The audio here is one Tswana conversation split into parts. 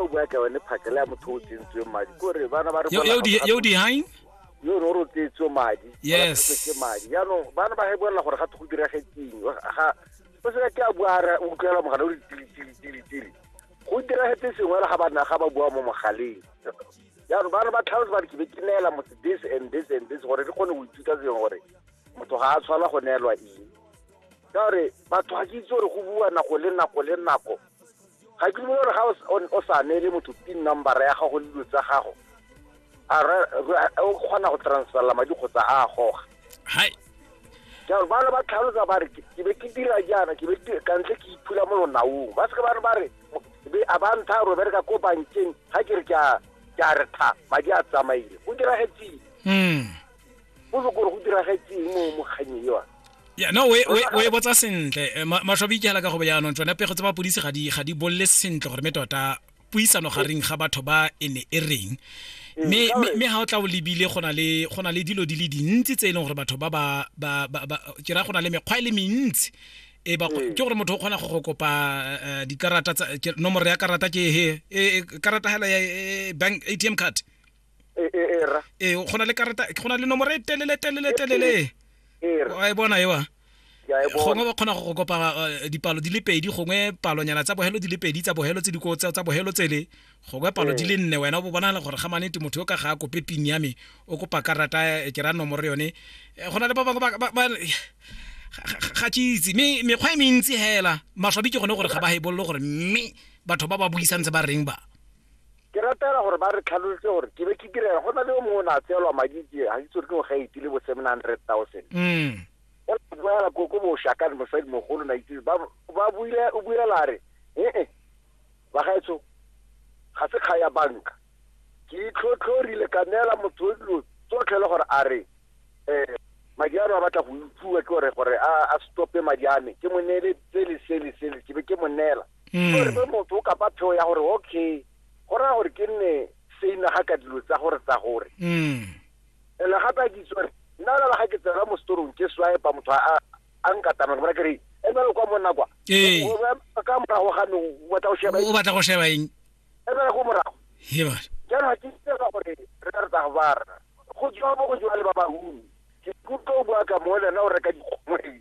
o bua ka yone phakele ya motho o tsentsweng madi kore bana ba re yo dihain yo no ro tsetswe madi yes ke madi yaanong bana ba hebolela gore ga go direge ting ga o se ke a bua re utlwela mogala o ditili tili tili tili go diragetse sengwe le ga ba ga ba bua mo mogaleng yaanong bana ba tlhalosa ba re ke be ke neela motho this and this and this gore re kgone go ithuta sengwe gore motho ga a tshwana go neelwa eng ka gore batho ga ke itse gore go bua nako le nako le nako ga ke gore ga o sa neele motho pin number ya gago le dilo tsa gago o kgona go transferla madi kgotsa a goga jalo bana ba tlhalosa ba re ke be ke dira jaana ke be kantle ke iphula mo lonaong ba seke bane ba re a ba ntha ro bereka ko bankeng ga ke re ke a re tha madi a tsamaile go diragetseng hmm. o se kore go diragetseng mo mokganyeng yone ya no we we we botsa sentle Eh, ma- masho a boikela ka go jaanong tsone pego tsa mapodisi ga di ga di bolle sentle gore me tota puisano gareng ga batho ba e ne e reng mme mme- mme ga o tla o lebile go na le go na le dilo di le dintsi tse e leng gore batho ba ba ba ba- ba- ke ra go na le mekgwa e le mentsi e ba ke gore motho o kgona go go kopa eh, dikarata tsa ke- nomoro ya karata ke he e- e- karata hela ya e- bank atm card e e e ra ee go na le karata go na le nomoro e telele telele telele e ra wa e bona ewa ke a e gongwe bona ba kgona go go kopa eh, dipalo di le pedi gongwe palonyana tsa bogelo di le pedi tsa bogelo tse di ko- tsa tsa bogelo tsele gongwe palo di le nne wena o bo bonagala gore ga manete motho yo ka ga a kope pin ya me o kopa karata eh, ke ra nomoro yone Eh, go na le ba bangwe ba- ba- ba- ga- ga ga ke itse mme mekgwa e mentsi hela maswabi ke gone gore ga ba hebololo gore mme batho ba ba buisang tse ba reng ba Ke rata hela gore ba re tlhalolotse gore ke be ke direla go na le o mongwe o ne a tseelwa madi ke ga itse gore ke ngwaga itile bo seven hundred thousand mm. o boela ko ko boshakane mosadi mogolo na itse ba ba buile o buela re ee bagaetsho ga se kga ya banka ke itlhotlhorile ka neela motho o dilo tsotlhe le gore a re um madi ano a batla go utlwiwa ke gore gore a stope madi ame ke mo neele tsele sele sele ke be ke mo neela mm. gore be motho o kapa pheo ya gore okay go raya gore ke nne seina ga ka dilo tsa gore tsa gore mm. ene gape a kitse gore nna la ga ke tsena mo storong ke swipa motho a nkatama ke bona ke re emele kwa monna kwa ee. ka morago ga me o batla go sheba o batla go sheba eng emele go morago jaanong ga ke itse gore re ka re tsa go bara go jwa mo go jwa le ba bahumi ke kutlwa o bua ka mo lena o reka dikgomoi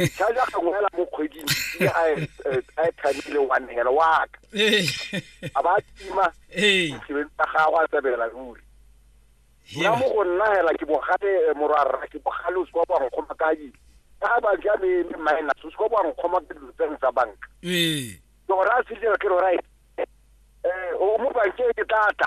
ntlha ja gangwe hela mo kgweding airtime e le one hela wa ka a ba tima sebedi sa gago a tsebela ruri nna mo go nna hela ke bogale eh, morwarra ke bogale o se kwa boankgoma ka eng ka ba ja me me minus o se kwa boankgoma ka dilo tseng tsa banka ke gore a se dira ke gore right eh, o mo bankeng ke tlatla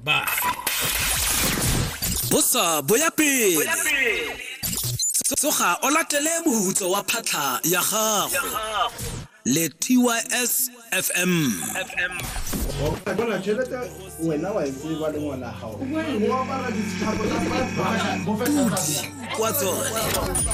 ba bosa bo ya pele tsoga o latele mohutso wa phatlha ya gago le tys fm bona tšhelete wena wa e tseba le ngwana gago o apara ditshabo tsa kwa tsone